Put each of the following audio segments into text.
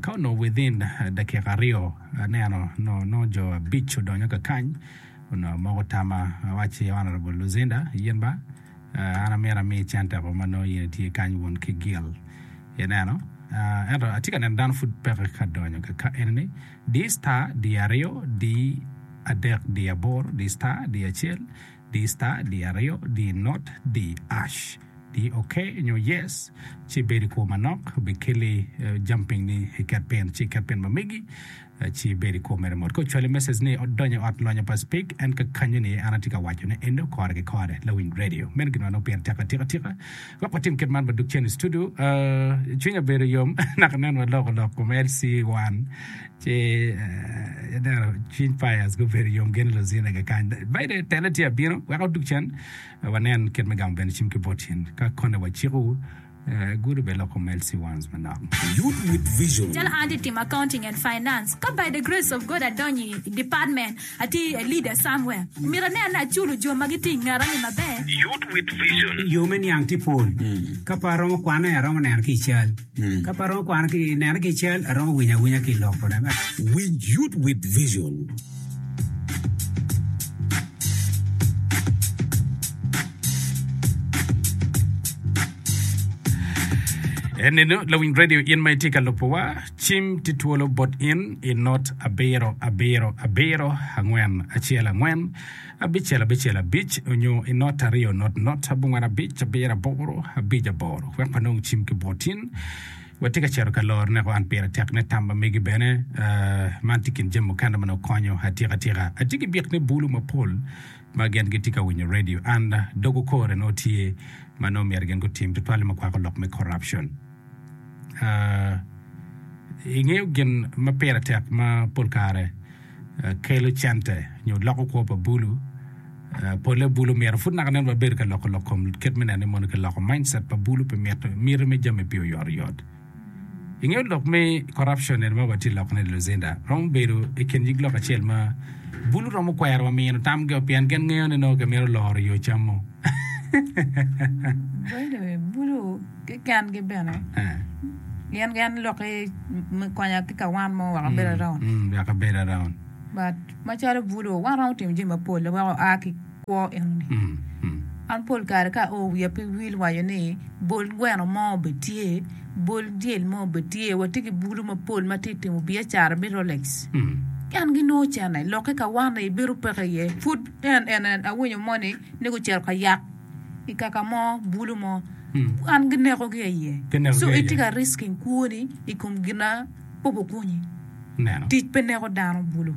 Ka onongo within dakika aryo aneno nongo jo abic odonyo ka kany onongo moko tama awacci Honourable Luzinda yin ba an amyero ami center ko ma nongo yin itye kany wun ki Gill ineno ento atye ka neno dano pud peke ka donyo ka ka enini diyi star diyo aryo diyi adek diyo aboro diyi star diyo acel Di star, di aryo, di not, di ash. Di ok nyo yes, ci bed i kwo manok, bikeli jam piny ni iket pin, ci iket pin ma megi, ci ibed i kwo mere mot. Ka ocwali message ni odonyo i ot lonyo pa Speke, en kakanyo ni an atye ka wacone eno kore ki kore, lawiny radio. Meno gin ma nongo pire tek atika tika. Wek watim kit man, wadug cen i studio. Cwinya bedo yom naka nen waloko lok kom LC one ci aneno cwiny Pius gubedo yom gin i luzinage kany. Baide tele tye abino wek odug cen wanen kit me gamo bene cim ki bot cen. Ka kone waciko gudo bene lok kom LC ones manok. Youth with Vision. Calo an atye timo Accounting and Finance, ka by the grace of God adonyo i department Atye i Elida somewhere. Myero aneno ni aculo jo ma gitye i ngeta-ni maber. Yo me niang tye pol. Ka pe aromo kwane, aromo neno ki i cal. Ka pe aromo kwano ki, neno ki i cal, aromo winyo awinya ki i lok. Winj Youth with Vision. Cim tye twolo bot in i not abiro abiro abiro angwen acel angwen abicel abicel abic onyo i not aryo not not abongwen abic abiro aboro abic aboro wek wanong cim ki bot in. Watye ka cito ka loro neko an pire tek ne tam ma megi bene. Uh, man tye kin jami mukene ma nongo konyo atika tika. Atye ki byek ne bulu mapol ma gen gitye ka winyo radio and dogo kore nongo tye ma nongo myero gen gutim tutwale ma kwako lok me corruption. Ingeyo gin ma pire tek ma pol kare kelo cente nyo loko kwo pa bulu? Pole bulu myero pud naka nen wabedo ka loko lok kom kit me neno ni mono kiloko mindset pa bulu pi miti me jami pi oyotoyot. Ingeyo lok me corruption eni ma watye lokone ni Luzinda romo bedo i kin nyig lok acel ma bulu romo kwero wa mino tamgi o pien gin ngeyo ni nongo kimito loro yo cam mo. Kekengi bene gin gin lok ki me konya ki ka wan mo wek abed around mm wek abed around but macalo buto wan romo timo jami mapol wek oa ki kwo enoni mm mm an pol kare ka oo wiya pe wil waco ni bol gweno mo bene tye bol dyel mo bene tye watye ki bulu mapol ma tye ka timo biacara me rolex mm en ginongo ocene lok ki ka wan-ni bedo peke iye pud en en awinyo moni ni gucito ka yat i kaka mo, bulu mo, wan ginekogi aye. So itye ka risking kwoni i kom gin ma pe gukonyi. Tic pe neko dano bulu.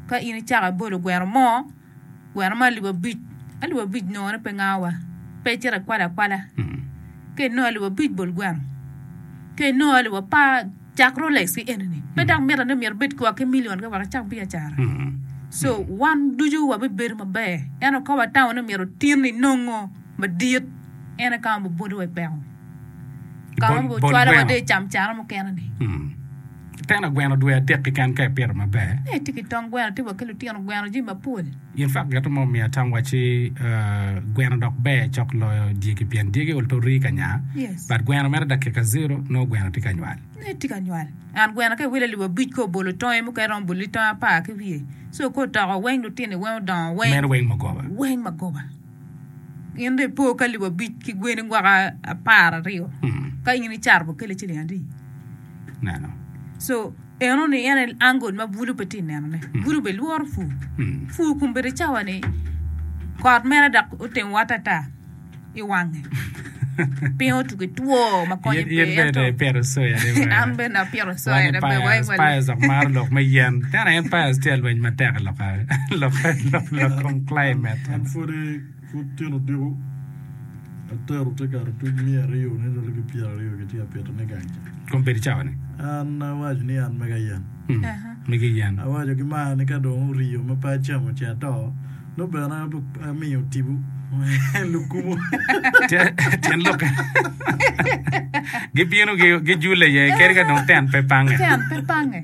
Ka in icako ibolo gweno mo, gweno mo alip abic, alip abic nongone pe ngawa, pe icito ikwalo akwala. Ka inongo alip abic bol gweno, ka inongo alip apar. Cak Rolex ki enini. Pe dang mitte ni myero ibed ki wa ki million ka wek icak biacara. So, wan ducu wabibedo maber. Ento ka watamo ni myero otin inongo madit, en aye ka ma biboliwa i peko. Ka ma bicwalowa dong i camcara mukene-ni. Tena gweno dwe adek keken ka ipito maber. Ee, tye ki tong gweno, tye wa ki lutino gweno, jami mapol. Gin fak gito ma omiya tam wacci gweno dok ber cok loyo dyegi pien dyegi ol to rii ka nya but gweno mere dakika zero nongo gweno tye ka nywal. Ee tye ka nywal and gweno ka iwilo alip abic ka obolo tonge mukene romo boli tonge apar ki wiye so ka otoko weng lutini weng odongo weng weng magoba. Gin dong epo ki alip abic ki gweni gwaka apar aryo ka in icato bo kele ciling adi neno so eno ni en en angle ma bulu pe ti neno ne bulu be lworo fu fu kun bedi cawa ni kot mere dok otimo wata ata i wange Pingo tuko ki two ma konye pe? In bene ipito soya de wee. An bene apito soya de pe weng wele. Pius dok maro lok me yen. Tena en Pius tye alweny matek i lok lok kom climate. An pwod tito odiko atero te kato tuc miya aryo ni lwelo ki pyera aryo ki tye apito ni gang ca. Kom bedo cawa ni? An awaco ni an mega yen. Mega yen. Awaco ki mar ni ka dong oriyo ma pe acamo ce ato. Nongo bene amiyo tipo lukumo. Tyen lokke. Gibino gijule iye kadi ka dong ten pe pange. Ten pe pange.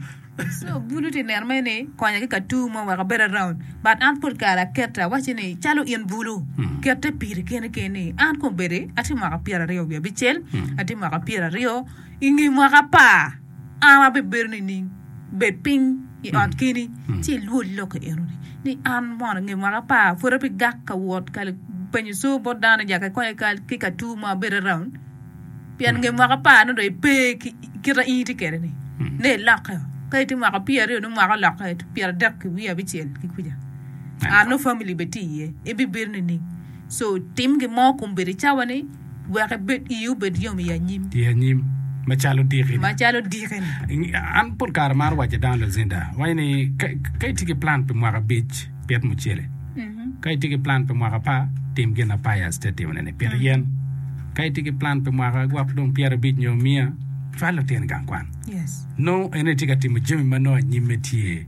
So bulu ti neno me ni konya ki ka tur mo wek abed around. But an pol kare akete awacci ni calo in bulu hmm. kete piri keni keni. An kong bedi ati mwaka pyera ryo wiya bicel. Hmm. Ati mwaka pyera ryo ingi mwaka pa. An abibedo nining? Bed piny i ot keni, ci ilwod lokke enoni ni, 'An mono ange mwaka apar, pud abigak ka wot ka penyo coo bot dano ja ka konya ki ka tur mo abedo around? Pien nge mwaka apar-ni dong ipe ki kit a in itye kwede-ni, nongo ilokke-o. Ka itye mwaka pyeraryo, nongo mwaka olokke, pyerardek ki wiye abicel ki kuca, an nongo famili bene tye iye. Ibibedo nining? So, tim gin mo kun bedo i cawa-ni. Wek ebed ii obed yom i anyim. I anyim, macalo diki-ni. Macalo diki-ni. An pol kare amaro wacce dano Lucinda, waco ni ka, ka itye ki plan pi mwaka abic, pit mucele. Ka itye ki plan pi mwaka apar, tim gin ma Pius tye ka timone-ni, pit yen. Ka itye ki plan pi mwaka gwok dong pyerabic nyo miya, cwal lutini gang kwan. Yes. Nongo en aye tye ka timo jami ma nongo anyimme tye.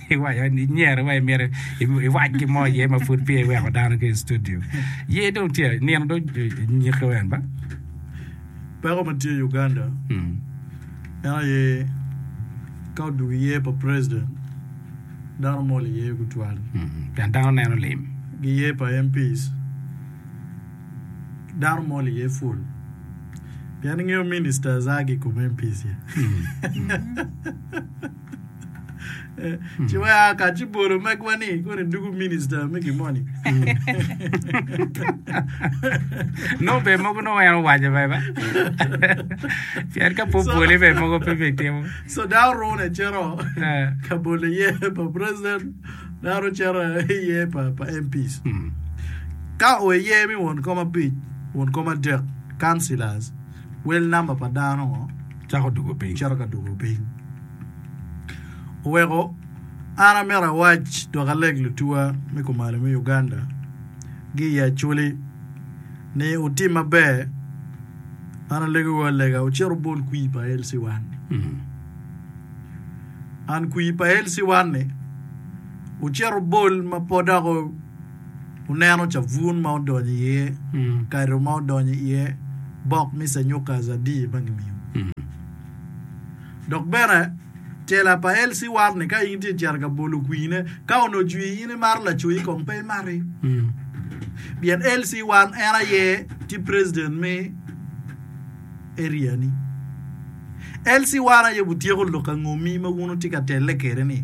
Iwaco ni inyero wa imito iwac ki mo iye ma pud peya iweko dano ki i studio. Ye dong tye nino do nyike wen ba? Peko ma tye i Uganda Hmm. en aye ka odwogo iye pa president dano mol iye gutwal. Hmm. Pien dano neno lim. Gi iye pa MPs dano mol iye full. Pien ingeyo ministers a ki i kom MPs ya. Hmm. Ci wek a ka ci bolo megwa ni koni dugu minista me gi moni. No be mogo no en owaco be ba. Pien ka po bole be mogo pe be timo. So da orune cero Eh. ka bolo ye pa president da oro cero ye pa pa MPs. Mm. Ka o ye mi won kom abic, won kom adek, councillors, wel number pa dano ngo? Cako dugo piny. Cito ka dugo piny. Oweko an amito awac dok aleg lutuwa me kumalo me Uganda gi i Acholi ni wutim maber man alegowu alega wucit wubol kwir pa LC1 ni. An kwir pa LC1 ni wucit wubol ma pe dok Wuneno cabun ma odonyo iye, kado ma odonyo iye, bok me canyuka azabi ma gimiyo. Dok bene, cela pa Elsie Warne ka in itye ka cito ka bolo kwiine, ka onongo ocwii in imaro lacoyi kong pe imati. Pien Elsie Warne en aye tye president me area ni. Elsie Warne aye otyeko lok angomi ma wun wutye ka telle kwede ni?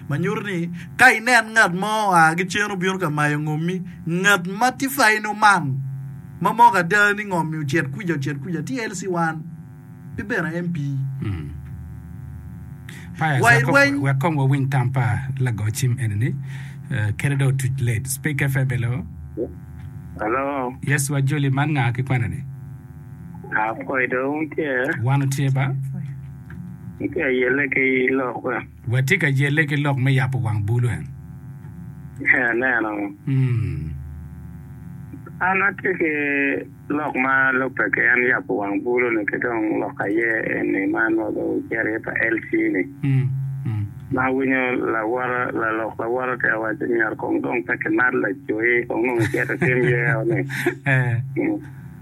ma nyuto ni ka inen ngat mo oa ki cen obino ka mayo ngommi, ngat ma tye faino man ma moko ada ni ngommi ocit kwica ocit kwica tye Elsie Wan, ki bene MP. Pius, Wa i rweny. wek kong wawiny tam pa lago cim eni-ni, eh, kite dong otuc late. Speak FM, hello. Hello, Yes, wa Juli, man nga ki kwene-ni? apoi dong tye. Wan otye ba? Watye ka yelle ki lok we? Watye ka yelle ki lok me yabo wang bul we? Ee, aneno. Hmm. An atye ki lok ma lubbe ki en yabo wang bulu-ni ki dong lok aye eni ma nongo dong wucito iye pa LC-ni. Hmm. Hmm. Ma awinyo lawote, lalok lawote tye ka waco ni myero kong dong pe kimat lacoyi, kong nongo icito itim yeo-ni. Ee. Hmm.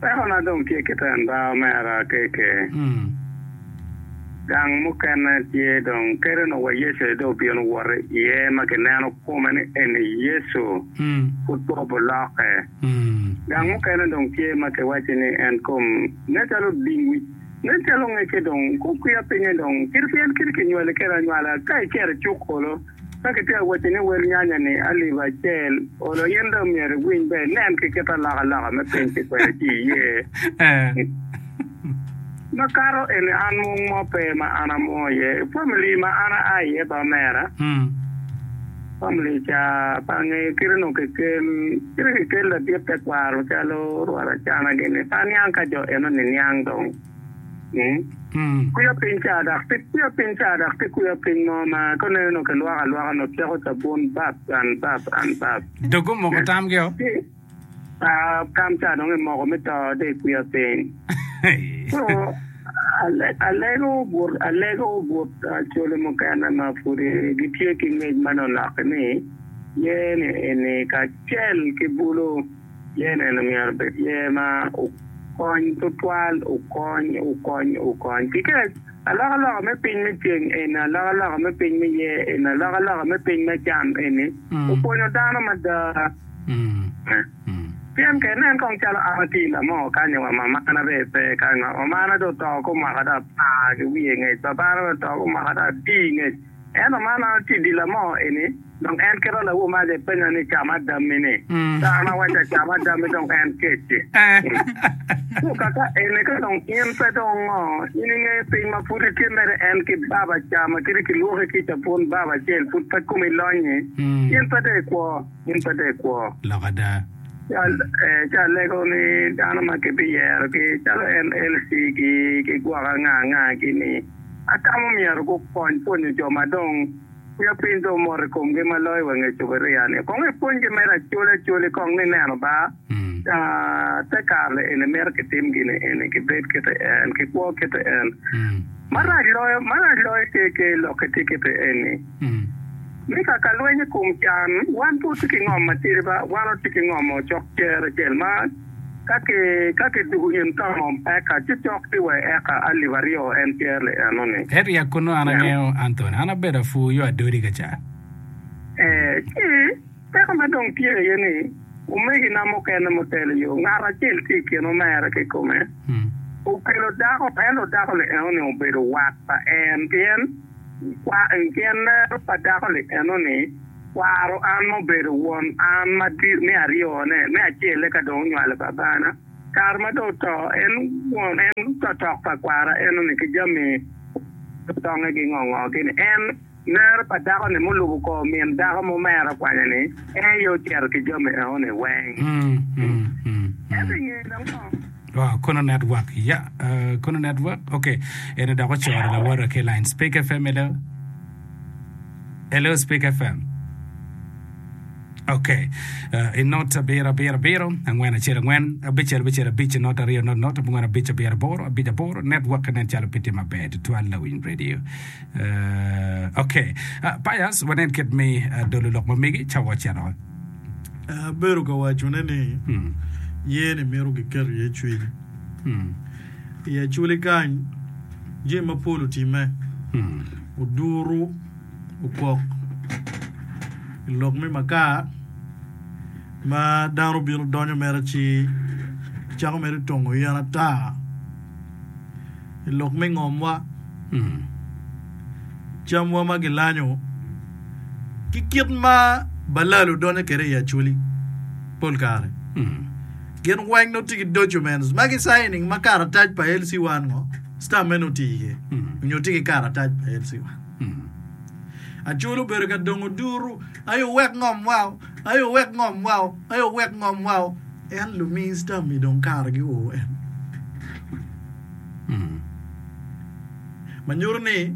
Peko na dong tye kiten ba omera keke gang mukene tye dong kede nongo wa Yecu aye dong obino woto iye ma kineno kome ni eni Yecu pud pe obuloke. Gang mukene dong tye ma kiwacci ni en kom nen calo oding wic nen calo ngecce dong kukwiya pinye dong kit pien kit kinywali kede anywala ka icito icuk olo. Ka kitye ka wacci ni wel nyanya-ni alip acel olo, in dong myero iwiny ba inen ki kit alokaloka me piny ki kwene ci iye. Makato eni an mung mo pe ma an amung iye. I famili ma an aa iye pa omera, famili ca bange kit onongo kikel kit kikel ladit tekwaro calo rwot acana gini pa niang ka jo enoni niang dong. Kwiya piny ca dok pe kwiya piny ca dok pe kwiya piny mo ma ka neno nongo kilwoko alwoka nongo ceko cabun bap and bap and bap. Dog gumoko tamgi o. Ah, tam ca dong imoko me to de kwiya piny. So, ale- alego but alego but ah, coli mukene ma pudi gitye ki ngec ma nonok-ki ni yene eni kacel ki bulu. Yen eni myero obed yer ma okony tutwal, okony, okony, okony. Kikec, alokaloka me piny me ceng eni, alokaloka me piny me yer eni, alokaloka me piny me cam eni opwonyo dano mada. Pien ka inen kong calo an atye i lamo kany-nyo wa, mamana bene pe kany-nyo. Mamana dong oto ki omaka dong apar ki wiye ngec, babana bene oto ki omaka dong adii ngec. Ento man a tye dil amo eni? Dong en keto lawomace penyo ni, Cam adammi ni? Kara ma wacci acam adammi dong en kec-ci? Ento kaka eni ka dong in pe dong ongo, in inge piny ma pud itye mere en ki baba ca ma kiti kilwoki kica pwon baba acel pud pe komi lonyi? In pe dong ikwo? In pe dong ikwo? Lok ada. Ci alego ni dano ma kibiyero ki calo en LC ki gwoko anga anga ki ni. Atamo myero gukony pwonyo jo ma dong miyo piny dong mot i komgi ma loyo wa nge Cuburia-ni. Kong ipwonygi mere acolacol i kong ni neno ba te kare lieni mito kitim gini eni, kibed kite en, kikwo kite en. Marac loyo, marac loyo KK. Lokke tye kite eni ni ka ka lweny i kom can, wan pud tye ki ngom matidi ba, wan watye ki ngom-o cok cere acel ma, Ka kiduku in ka ngom eka ci cok ki wai eka alip aryo en tyer le eno ni. Ento ya kunu an angeyo Anthony an abedo apur yo adodi ka ca. Ee ci peko ma dong tye aye ni omegi na mukene mutelo yo ngat acel ki ikin omere ki kome okelo dako ento dako li eno ni obedo wat pa en pien lero pa dako li eno ni Kwaro an ma obedo won an ma me aryone, me acelle ka dong onywalo babana. Kare ma dong oto, en won, en otok pa kwara eno-ni ki jami tongnge ki ngo ngo-gi-ni. En, nere pa dako-ni mulubo kor min dako ma omera kwanya-ni, en aye ocito ki jami eno-ni weng. Ento i ngeye dong ngo? Oh, Kono Network, ya, Kono Network, ok, eno dok ocoro lawote ki i line. Speak FM, hello. Hello Speak FM. Ok. Uh, in not abiro abiro abiro angwen acel angwen abicel abicel abic in not aryo not not abungwen abic abiro aboro abic aboro network nen calo piti maber tutwal lawiny radio. Uh, ok. Uh, Pius wanen kit mi uh, dolo lok ma megi ca waceno. Abedo ka wacone ni Hmm. yeni mito giket iye cwiny. Hmm. I Acoli kany, jami mapol otimme. Oduru okwok i lok me makar ma dano bino donyo mere ci kicako mere tongo yen ata i lok me ngomwa. Camwa ma gilanyo ki kit ma balalo donyo kwede i Acoli pol kare. Gin weng nongo tye ki documents ma gisainin ma karatac pa LC1 ngo stamp meno oti iye nyo tye ki karatac pa LC1. Acol obedo ka dongo duru, Ai owek ngom wao, ai owek ngom wao, ai owek ngom wao. En lumi stamp-mi dong kare gi oo en. Ma nyuto ni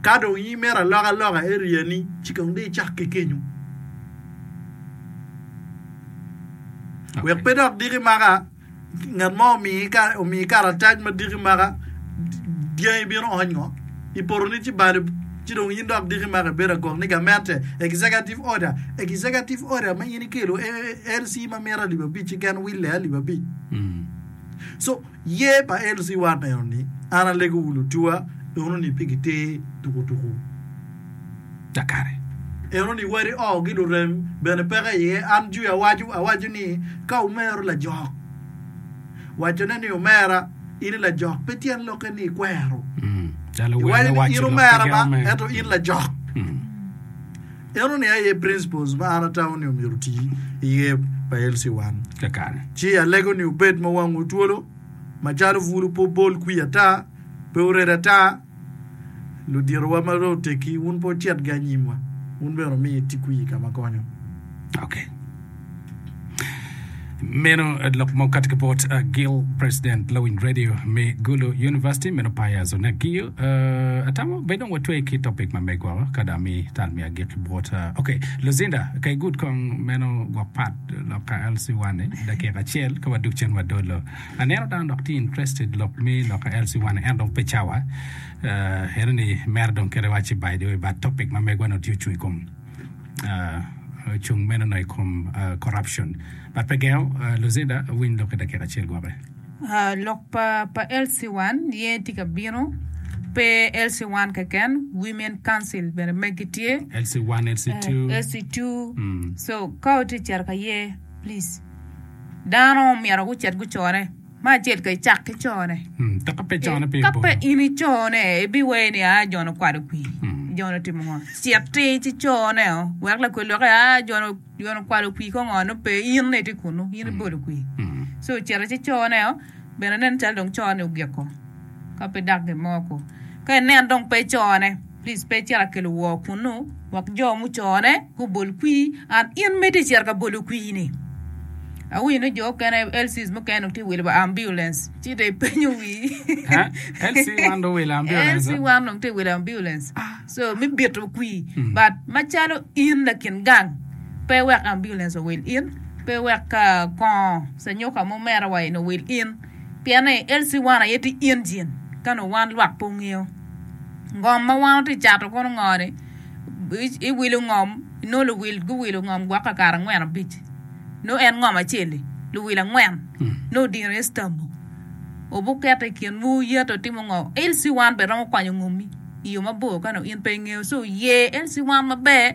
ka dong imito alok aloka area-ni ci kong dong icak ki kenyo. Wek pe dok diki maka, ngat mo omiyi karatac ma diki maka, dyangi bino ony ngo? I potoni ci balo, ci dong in dok diki maka ibedo agok ni gamente, executive order, executive order ma in ikelo LC ma mita alip abic-ci gen wille alip abic. So. Ye pa LC Wat eno ni, An alego wu lutuwa eno ni pi giter tuku tuku kakare. Eno ni wadi oo gi lurem bene peke iye. An jwi awacu awacu ni ka wumero lajok, wacone ni omera, in i lajok pe tyen lokke ni ikwero. Iwaco ni in omera ma ento in lajok. En oningo aye principles ma an atamo ni omyero oti i yer pa LC1. Kakare. Ci alego ni obed ma wangu twolo, macalo bulu pe obol kwii ata, pe ored ata. Luditowa ma dong otegi, wun pe wucitgi anyimwa, wun bene wumi iti kwii kama konyo. Okay. Meno lok mo kati ki bot uh, Gil President Lawiny Radio me Gulu University meno Pius Onagiyo uh, atamo be dong watwe ki topic ma me gwoko kada mi tal mi agik ki bot uh, okay Lucinda ka igud kong meno gwok pat lok ka LC1 ni dakika acel ka waduk cen wadolo aneno dano dok ti interested lok mi lok ka LC1 en dong pe cawa uh, eno ni mero dong kere waci by the way but topic ma megwa no ti ocung i kom ocung meno dong i kom corruption but pe gengo Lucinda winy lok ki dakika acel gwoke. Uh, lok pa pa LC1 ye tye ka bino, pe LC1 keken, Women Council bene megi tye. LC1, LC2. Eh, LC2. Mm. So ka utye cito ka ye, please. Dano myero gucit gucore. Ma acel ka icak ki cone. Ka pe cone pe ka pe in icone ibiweye ni aa jone okwalo kwi jone otimo ngo cit ti ci cone o wek lakwe lokke aa jone jone okwalo kwi ko ngo nongo pe in ni ti kunu in ibolo kwi so ocito ci cone o bene nen calo dong cone ogiko ka pe dak gin mo ko ka inen dong pe cone Please pe icit akelo wor kunnu wek jo mucone gubol kwir and in mito icito ka bolo kwir ni. Awinyo ni jo okene LCs mukene dong tye wilo wa ambulance ci dong ipenyo wii. Huh? LC wan dong wilo ambulance? LC wan dong tye wilo ambulance. So me bito kwir but macalo in lakin gang pe wek ambulance owil in, pe wek ka kongo canyuka mo merowa eni owil in. Pien ni LC wan aye tye Engine ka nongo wan lwak pe ongeyo ngom ma wan watye cato kono ngo ni i wilo ngom inongo luwil guwilo ngom gwok kakare angwen abic nongo en ngom acel li luwil angwen nongo odino iye stambo obu keto i kin wu yeto timo ngo LC wan bene romo kwanyo ngomi iyo mabor ka nongo in pe ingeyo so yer LC wan maber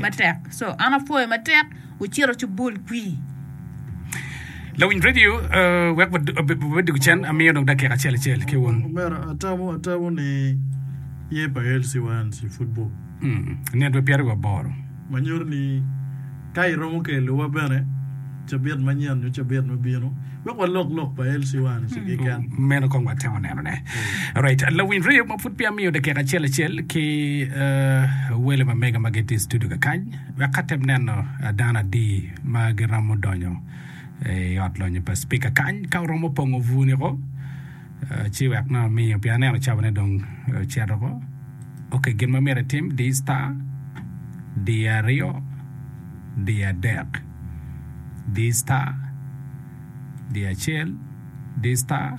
matek so an apwoyo matek wucito cu bul kwii. Lawiny radio wek wabed dog cen amiyo dong dakika acel acel ki wun. Omera atamo atamo ni ye pa Elsie Wans i football. Mm. Nitwe pyeraryo aboro. Manyuto ni ka iromo kelo wa bene. Cabit manyen nyo cabit ma bino wek walok lok pa LC one ki keken. Meno kong watemo neno ne. Alright, lawiny reyo ma pud peya miyo dakika acel acel ki wele ma mega ma gitye i studio kakany wek ka tem neno dano adi ma giromo donyo i ot lonyo pa speaker kany ka oromo pongo vu ni ko ci wek nongo amiyo pia aneno cabo ne dong cero ko. Okay, gin ma myero itim di star di aryo di adek. di star, di acel, di star,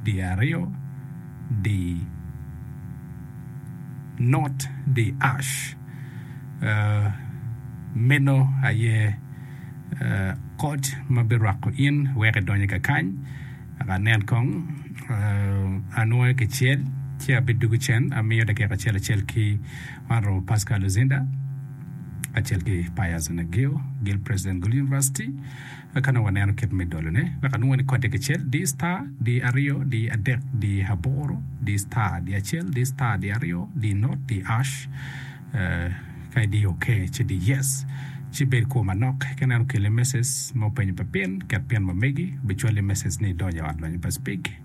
di aryo, di not, di ash. Uh, meno aye uh, kot ma birwako in wek idonye ka kany. Aka nen kong, uh, anwoye kicel, ci abidugu cen, amiyo dakika acel acel ki Man oromo Pascal Luzinda kacel ki Pius Nagio, Gil President Gul University, ka nongo waneno kit me dolone wek anongo ni kode kicel, di star, di aryo, di adek, di aboro, di star, di acel, di star, di aryo, di not, di ash, ka idiyo ok ci di yes. Ci bed kwo manok ka ineno okeli message ma openyo pa pin, ket pin ma megi, bicwali message ni idonyo i ot lonyo pa Speke.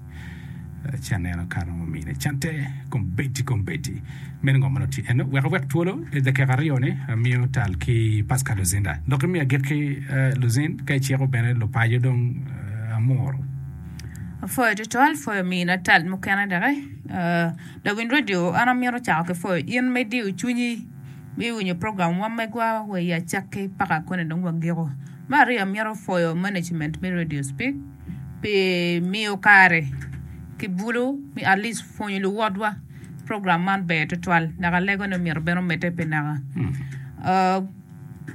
Ci aneno kare ma omine cante kombeddi kombeddi meno ngo ma nongo tye eno. Wek awek twolo i dakika aryo-ni amiyo tal ki Pascal Luzinda. Dok imi agikki eh, Luzin, ka iciko bene lupaco dong eh, amuru. Apwoyo tutwal, pwoyo mina tal mukene doki. Eh, lawiny radio, an amito cako ki pwoyo in me diyo cwinyi me winyo program wa megwa wa i acakki paka koni dong wagiko. Me aryo amito pwoyo management me Radio Speak. pi miyo kare ki bulu me at least pwonyo luwotwa program man ber tutwal dok alegone myero bene omedde pi naka ah,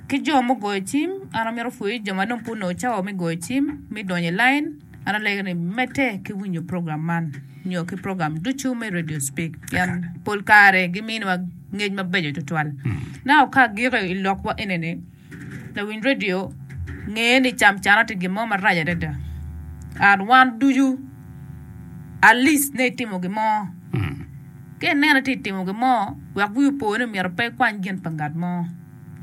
ki jo ma ogoyo cim an amito pwoyo jo ma dong pud onongo cawa me goyo cim me donyo i lain an alego ni medde ki winyo program man nyo ki program ducu me radio speak pien pol kare gimiwa ngec mabeco tutwal naka ka agiko i lokwa enini. Lawiny redio nge ni cam calo tye gin mo marac adada and wan ducu at least nongo itimo gin mo ka ineno ni tye ka timo gin mo wek wiyi opo ni myero pe ikwany gin pa ngat mo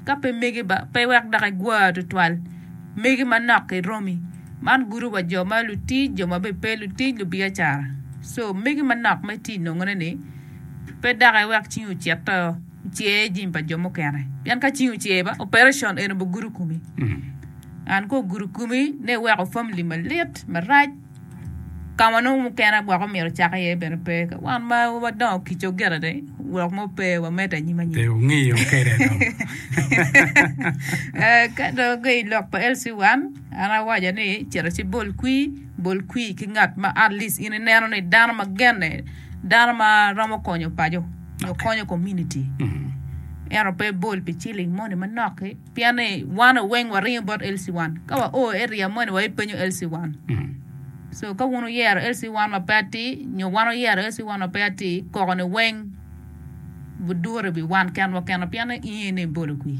ka pe mege ba pe wek dok igwa tutwal mege manok ki romi man gudo wa jo ma lutic jo ma bene pe lutic lubiacara so mege manok ma itye ka nongone ni pe doki wek cingi ocito. Cer jami pa jo mukene pien ka cing ocer ba operation eno bi gudo komi and ka ogudo komi ne iweko family malit marac ka ma nongo mukene gwok omyero ocak iye bene pe ka wan ma wadongo kica ogito de lok mo pe wamede anyim anyim Pe wungiyo kede dong. Eh, ka dong ki i lok pa LC wan an awaco ni cito ci bol kwi bol kwi ki ngat ma at least in ineno ni dano ma genne dano ma romo konyo paco nyo konyo komuniti ento pe bol pi ciling moni manok-ki pien ni wan weng waringo bot LC I. Ka wao eria moni wa ipenyo LC I. So ka wun wuyero LC I ma pe atir nyo wan wuyero LC I ma pe atir, koko-ni weng budure i wi wan kenwa kenwa pien ni inge ni ibolo kwi.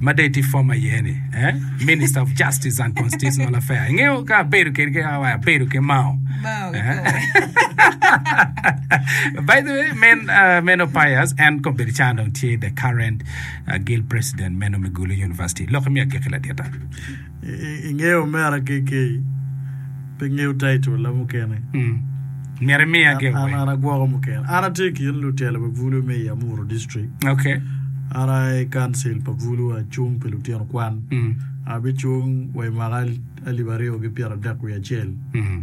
ma dong itye former iye ni eh? minister of justice and constitutional affair ingeyo ka abedo kedi ki awa abedo ki mao Mao Eh? koko. by the way men uh, men opayas en kombedo can dong tye the current uh, guild president meno me gulu university lok imiya giki ladita ingeyo mera KK pe ngeyo title la mukene. Mm. Myero imiya ge An, an agwoko mukene. An atye kin lutelo pa Bulu me i Amuru District. Okay. An aye council pa Bulu acung pi lutino kwan. Mm. Abicung wa i mwaka alip aryo ki pyera dek wiye acel. Mm.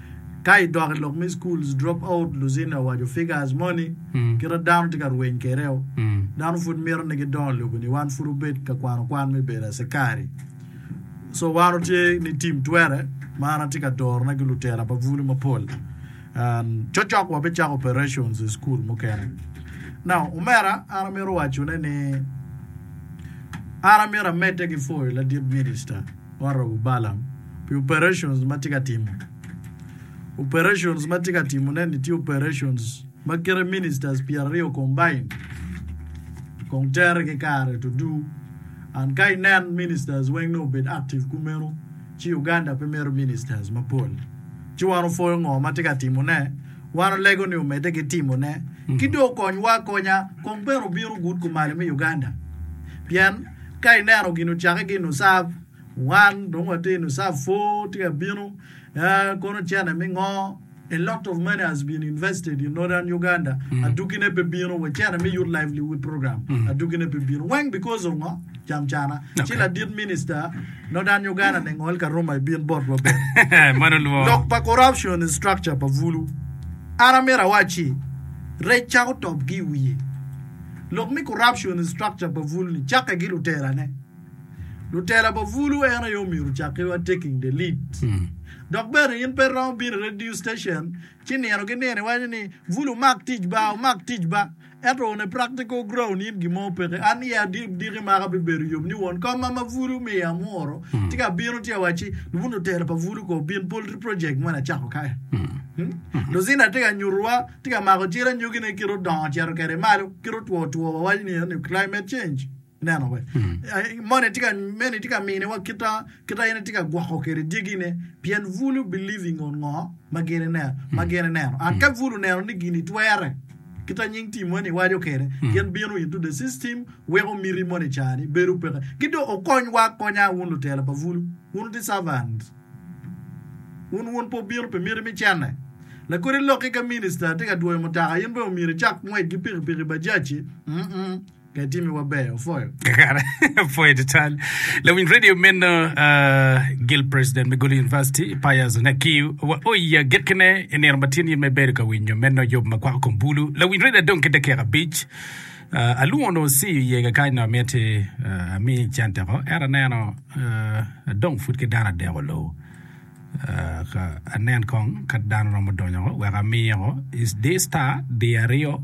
Ka i dok i lok me schools dropout Luzina owaco figures moni kita dano tye ka rweny kwedeo dano pud mito ni gidongo lobo ni wan pud wubed ka kwano kwan me bedo acekari so wan watye ni team twere ma an atye ka doro na ki lutera pa bulu mapol and cocok wa bicako operations i school mukene now omera an amito waco ne ni an amito amedde ki foyo ladit minister Honorable Balam pi operations ma tye ka timo. Operations ma tye ka timone ni tye operations ma kite ministers pyeraryo combined kong tere ki kare tudu and ka inen ministers weng nongo obed active kumeno ci Uganda pe mito ministers mapol ci wan opwoyo ngo ma tye ka timone wan olego ni omedde ki timone ki dong okonywa akonya kong bene obino good kumalo me Uganda pien ka ineno gin ocake gin oserve Wan dong watye in osaa pwor tye ka bino aa kono cene me ngo a lot of money has been invested in northern Uganda mm. aduki ne pe bino wa cene me youth livelihood program mm. aduki ne pe bino weng because of ngo jam cana okay. ci ladit minister northern Uganda ne ngol ka Roma ibin bot wa ben mano luo lok pa corruption structure pa vulu an amira wachi rec chako top gi wiye lok me corruption structure pa vulu ni chake gi luterane Lutela pa Vulu en aye omyero ocakkiwa Taking the Lead. Dok bene in pe iromo bino i radio station ci nino ki nino iwaco ni, Vulu omak tic ba, omak tic ba. Ento on a practical ground in gin mo peke. An i adiki maka bibedo yom ni won koma ma Vulu omiyo amwuro ci ka abino ci awacci, Lubunu lutela pa Vulu ko obin poultry project moni acako kae. Lucinda tye ka nyutuwa, tye ka mako cal anyogine kit odongo ocito kwede malo, kit otwo two wawaco ni climate change. Ineno wek moni tye ka meni tye ka mine wa kita kita en tye ka gwoko kede dyegi ne pien bulu believe ingo ngo ma gin ineno ma gin ineno and ka bulu neno ni gini twere kita nying team moni iwajo kede gin bino into the system weko miti moni cani bedo peke ki do okony wa konya wun lutela pa bulu wun wuti servant wun wun po bino pi miti mi cene lakodi loki ka minister tye ka dwoyo mutaka in bene omyero icak ngwec gi piki piki bajaci mm Pe timi wa ber opwoyo. Kakare, apwoyo tutwal. Lawiny radio meno Gil President me Gulu University, Pius Nakiu, wa oye agikkine i nino ma tye ni me bedo ka winyo meno yub ma kwako kom bulu. Lawiny radio adong ki dakika abic. Ah, alwongo onongo Osi oye kakayi nongo amiti ah, ami cente ko. Ento aneno ah, adong pud ki dano adek olo. Ah, ka anen kong ka dano romo donyo ko wek amiyeko is di star di aryo.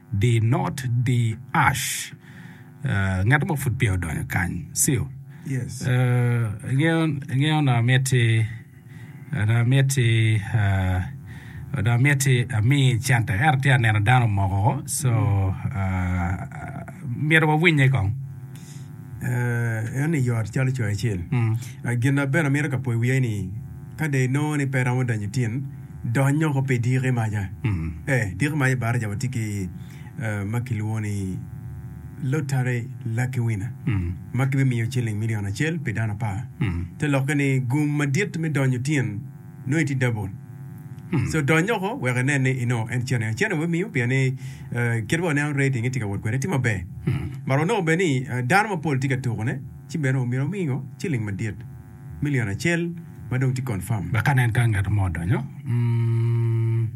Di not di ash. Ngat mo pud peya odonyo kany. Sil. Yes. Ingeyo onongo amiti, onongo amiti, onongo amiti ami cente. Ento tye aneno dano omoko. So, myero wawinye kong. Eno-ni yot calo coyo acel. Gin na bene amito ka po i wiye ni, ka dong inongo ni pe iromo donyo i tin, Dony noko pi diki maca. Ee, diki maca i baraca watye ki ma kilwongo ni Lottery Lucky Winner ma kibimiyo ciling milion acel pi dano apar. Te lokke ni gum madit me donyo tin nongo itye double. So dony noko wek inen ni inongo en cene acel aye wimiyo pien ni kit ma waneno rating-nge tye ka wot kwede tye maber. Mar wanongo bene ni dano mapol tye ka tukone ci bene omyero omingo ciling madit. milion acel ma dong tye confirm. Wek anen ka ngat mo odonyo,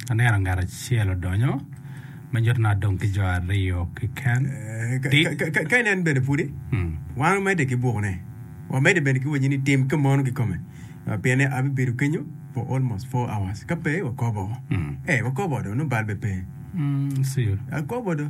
aneno ngat acel odonyo ma nyuto ni adong ki jo aryo keken. Ka inen bene pudi, wan wamedde ki buku ne, wamedde bene ki wanyini tim ka mono kikome. Pien ni abibedo kenyo for almost four hours, ka pe wakobo. Eh, wakobo do, nongo bal bene pe. Akobo do.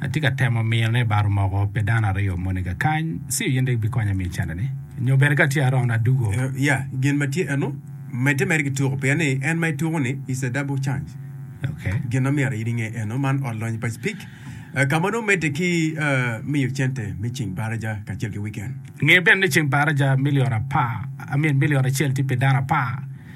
Atye ka temo mino ni baro moko pi dano aryo moni kakany, ci in rik bikonya miyo cente-ni. Nyo bene ka tye arono adugo. Ya, gin ma tye eno, medde mere ki tuko, pien ni en ma ituko-ni is a double chance. Ok. Gin ma myero in inge eno, man ot lonyo pa Speke, ka ma nongo medde ki miyo cente me ceng baraja kacel ki wiken. Nge bene ni ceng baraja milion apar, I mean, milion acel tye pi dano apar.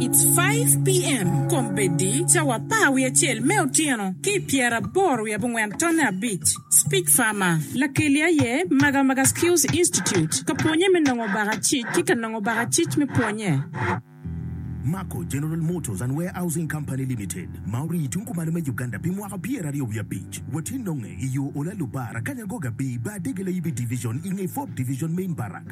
It's five PM kom bedi cawa apar wiye acel me otyeno ki i pyera aboro wiye abongwen tonne abic. Speech Farmer, Lakeli aye Maga Maga Skills Institute ka pwonye me nongo baka cic ki ka nongo baka cic me pwonye. Mako General Motors and Warehousing Company Limited ma orii tung kumalo me Uganda pi mwaka pier aryo wiye abic. Watye nonge i yo Ola Lubara, Kanyangoga Bii, Baa Dege Layibi Division i nge Fourth Division Main Barrack.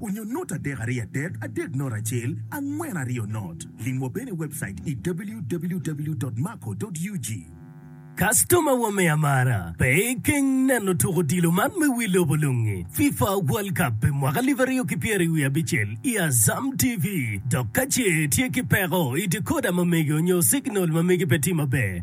Onyo not adek aryo adek adek not acel angwen aryo not. Limwa bene i webcait i www.maco.ug. Customer wa me amara, pe ikeng neno tuk odilo man me wi lobo lungi, FIFA World Cup pi mwaka alip aryo ki pyeri wiye abicel i Azam TV, dok kace itye ki peko i decoder ma mege onyo signal ma mege pe tye maber,